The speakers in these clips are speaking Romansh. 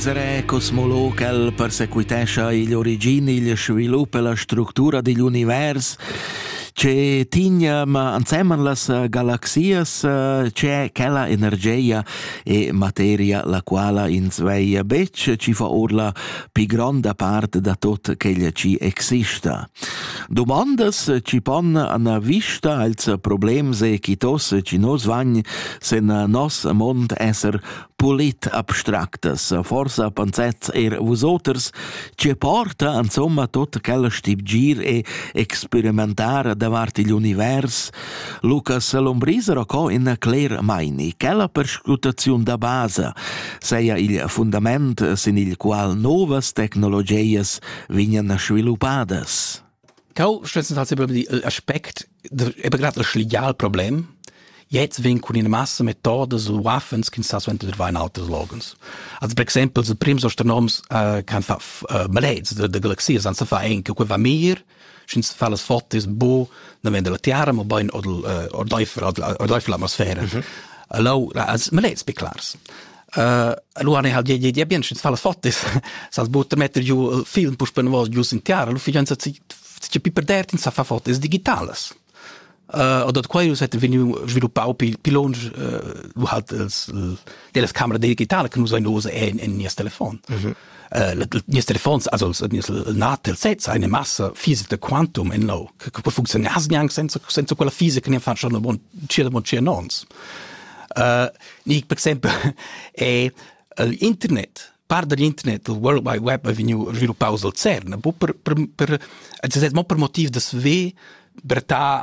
Zarè cosmolog el persequitescha igl origin, igl svilup e la structura digl univers che tigna ma anseman las eh, galaxias, eh, c'è quella energia e materia la quala ins veia betg, ci fa or la pi gronda part da tot quella ci exista. Domandas ci pon ana vista als problems e chi tos ci nos vagn sen nos mond esser politabstractas, forsa pensets eir vusoters, che porta insomma tutta quella stibgir e experimentar davart igl univers, Lucas Lombriser ho co in cler maini, che la perscrutaziun da basa seia il fundament sin il qual novas tecnologias vignan sviluppadas. Cau stess ha sempre di il aspect è begrad il schlial problem. Jetzt vin cun ina massa metodas u waffens che sa suenter va in alters logens. Also per exempel se prims astronoms uh, can fa uh, maleds de, de galaxias an sa fa en che va mir schins fa las fotis bo na vende la tiara ma bain odel uh, ordeifer odel atmosfera. Mm -hmm. Allo as maleds be clars. Allora ne hal die die bien schins fallas fotis. Sas butter metter giu film pus pen vos giu sin tiara, lu fijanza ci pi perder in sa fa fotis digitalas. Uh, oder quailus hätte venu sviluppau pi longe uh, lu halt els delas camera digitale che nus ein ose en in nies telefon. Mm -hmm. nies telefons also nies natel sez eine masse fiese de quantum in lo che può funzionieren hast niang senza senza quella fiese che ne fa schon bon cia bon cia nons uh, nick per esempio è il internet par dagl internet il World Wide Web è vegnu sviluppaus al CERN per per per mo per motiv da sve berta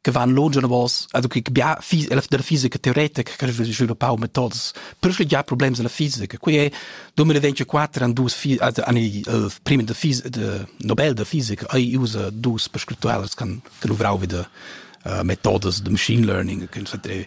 che van longe anavos, also che bia fis la della fisica teoretica che sviluppa pau metodos. Per che già problemi della fisica. Qui è 2024 an dus fi also an il uh, primi de fis de Nobel de fisica ai usa dus per scriptualas kan kan uvrau wieder uh, metodos de machine learning che sa tre